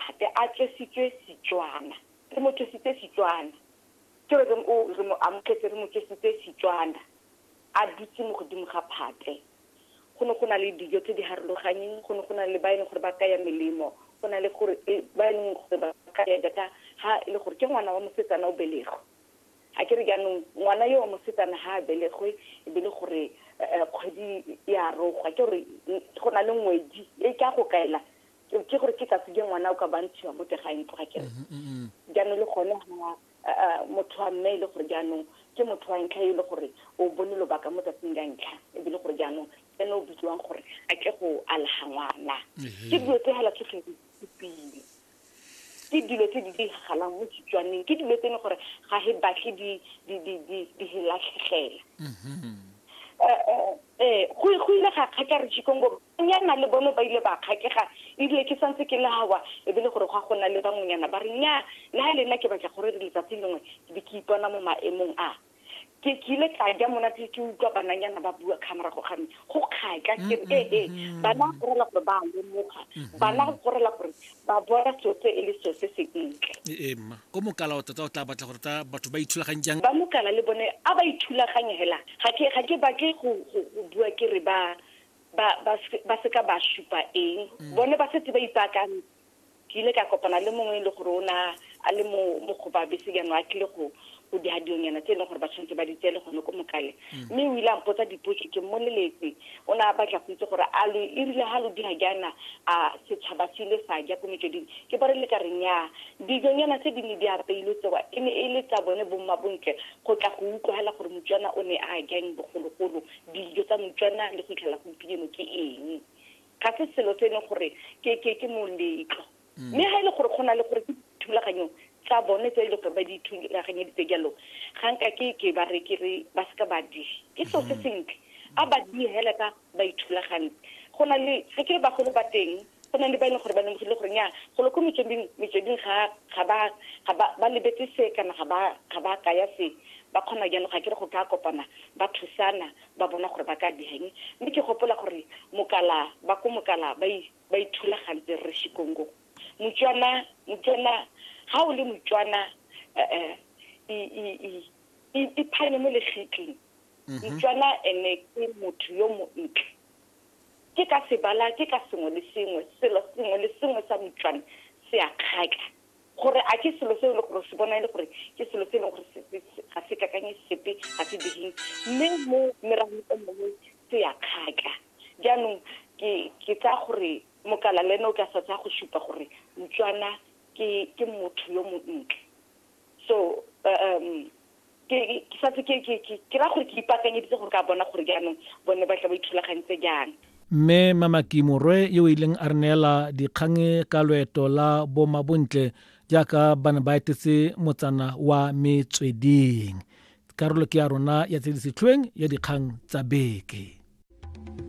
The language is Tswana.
gape a tswesitswe Setswana. Re mo tswesitse Setswana. Ke re reng o re mo amogetse, re mo tswesitse Setswana. A dutse mo godimo ga phate. Go ne go na le dijo tse di harologanyeng, go ne go na le ba e leng gore ba kaya melemo, go na le gore ba e leng gore ba kaya jaaka ha e le gore ke ngwana wa mosetsana o belegwe. A ke re jaanong ngwana yo wa mosetsana ha a belegwe e be le gore kgwedi e a rogwa, ke gore go na le ngwedi e ka go kaela ke gore ke tsatsi je ngwana o ka bantshiwa mo teng ga ntlo ga kere jaanong le gone ga motho wa mme e le gore jaanong ke motho wa ntlha e le gore o bone lobaka mo tsatsing la ntlha ebile gore jaanong ene o bitsiwang gore a tle go alaga ngwana ke dilo tse fela tsotlhe di supile ke dilo tse di diragalang mo setswaneng ke dilo tse e leng gore ga e batle di latlhegela ee go go ile ga kgaka re jikongo nyana le bone ba ile ba kgakega ebile ke santse ke lawa e be le gore gwa gona le bangwenyana ba re nya le ga le nna ke batla gore re letsatsi lengwe ke be ke ipona mo maemong a ke ke ile ka ja monate ke utlwa bananyana ba bua ka morago ga me go kgaka ke ee bana go rela gore ba lemoga bana go rela gore ba bona sotse e le sotse se ntle. Ee, mma. O mokala wa tota o tla batla gore ta batho ba ithulaganye jang? Ba mokala le bone a ba ithulaganye hela. Ga ke, ga ke batle go, go, go bua ke re ba, ba, ba, se, ba seka ba supa eng. Bone ba setse ba ipaakantse. Ke ile ka kopana le mongwe e le gore o ne a, a le mo, mo go ba bese jaanong a tlile go, o di hadionyana tse e leng gore ba tshwanetse ba di tsele gone ko mokale mm. mme o ile a mpotsa dipotso ke mmoleletse o ne a batla go itse gore a lo e rile ga lo di hajana a setšhaba se ile sa ja ko metsweding ke bare le ka re nyaa dijonyana tse di ne di apeilwe tsewa e ne e le tsa bone bomma bontle go tla go utlwagela gore motswana o ne a jang bogologolo dijo tsa motswana le go itlhela gompieno ke eng ga se selo se e leng gore ke moletlo mme ga e le gore go na le gore ke thulaganyo tsa bone tse e le gore ba di thulaganyeditse jalo ga nka ke ke ba re ke re ba seka ba di ke seo se sentle a ba di hela ka ba ithulagantse go na le ga ke re bagolo ba teng go na le ba e leng gore ba lemogile gore nya golo ko metsweding metsweding ga ga ba ga ba ba lebetse se kana ga ba ga ba kaya se ba kgona jalo ga ke re go ka kopana ba thusana ba bona gore ba ka diheng mme ke gopola gore mokala ba ko mokala ba ba ithulagantse re shikongo motswana motswana ga o le motswana eh, eh, iphanye mo lefitleng mhm. motswana ene ke motho yo montle ke ka sebala ke ka sengwe le sengwe selo sengwe le sengwe sa motswana se a kgaka gore a ke selo se e le gore se bona e le gore ke selo se e leng gore ga se kakanye sepe ga se digeng mme mo meragong e mongwe se ya kgaka jaanong ke tsaya gore mokala le ene o ka sa tsaya go supa gore motswana ke motho yo montle so um ke santse ke ke ke ke ra gore ke ipaakanyeditse gore ka bona gore jaanong bone ba tla ba ithulagantse jang mme mamaki morwe yo o ileng a re neela dikgang ka loeto la bomabontle jaaka ba ne ba etetse motsana wa metsweding karolo ke ya rona ya tse di setlhoeng ya dikgang tsa beke